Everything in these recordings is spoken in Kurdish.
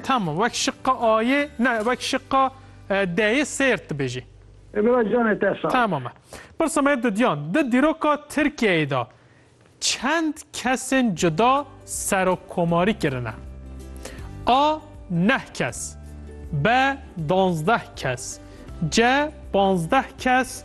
Tamam wek şiqqa ayê ne wek şiqqa deyê sêrt dibêjî. E bira canê te sağ. Tamam e. Pirsa me didiyan di dîroka Tirkiyeyê de çend kesên cuda serokkomarî kirine? A neh kes B danzdeh kes C panzdeh kes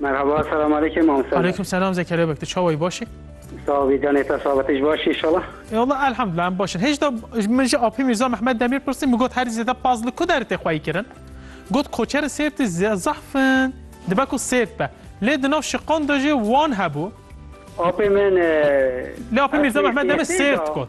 Merhaba, selam aleyküm Mamoste. Aleyküm selam Zekeriya Beg, tu çawa yî baş î? Sağ ol bî canê te sağ be, tu jî baş î inşallah? E Allah elhamdulillah em baş in. Hêjda min ji Apî Mîrza Mehmed Demîr pirsî min got herî zêde paz li ku der tê xweyî kirin? Got koçerên Sêrtî zehf in, dibe ku Sêrt be. Lê di nav şiqan de jî wan hebû. Apê min e, Lê Apî Mîrza Mehmed Demîr Sêrt got.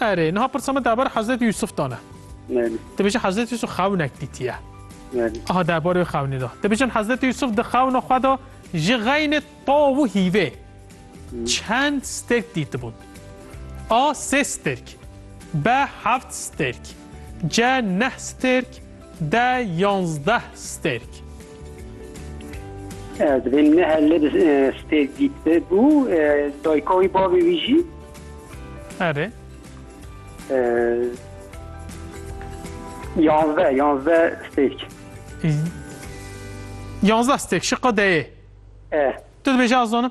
Erê, niha pirsa min derbarê Hezretî Yûsûf de ne. Dibêje Hezretî Yûsûf xewinek dîtiye. Aha derbarê wê xewnî de. Dibêjin Hezretî Yûsûf di xewna xwe de ji xeynê taw û hîvê çend stêrk dîtibûn. A sê stêrk. B heft stêrk. C neh stêrk. De yanzdeh stêrk. Divê ne her lê bi stêrk dît be bû. Dayka wî bavê wî jî. Erê. Yanzdeh, yanzdeh stêrk. Yanzdeh stêrk şiqa deyê. E. Tu dibêje azanim?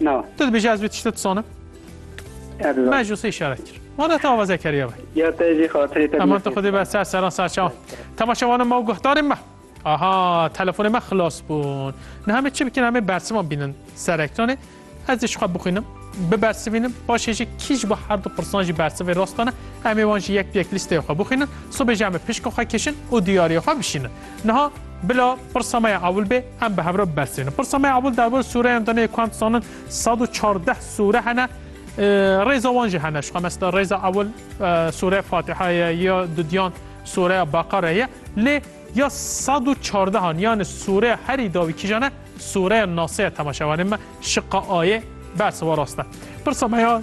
Na. Tu dibêjî ez vê tiştê dizanim? Erza. Me ji wê sê îşaret kir. Ma de te avazek heriye be. Ya te jî xatirê te. Heman tu xwedê be ser seran ser çawan. Temaşevanan me û guhdarên me. Aha telefonê me xilas bûn. Niha me çi bikin hemê bersivan bînin ser ekranê. Ez dê ji xwe bixwînim. Bibersivînim. Paşê jî kî ji bo her du pirsan jî bersivê rast dane. Em ê wan jî yek bi yek lîsteya xwe bixwînin. Sibê jî em ê pişka xwe kişin û diyariya xwe bişînin. Niha bila pirsa me ya ewil bê em bi hevre bibersivînin. Pirsa me ya ewil derbarê sûreyan de nê ku em dizanin sed û çardeh sûre hene rêza wan jî hene. Şixa mesela rêza ewil sûreya Fatiha ye ya dudiyan sûreya Beqare ye lê ya sed û çardehan yanê sûreya herî dawî kîjan e sûreya Nase ye temaşevanê me şiqa ayê bersiva rast e. Pirsa me ya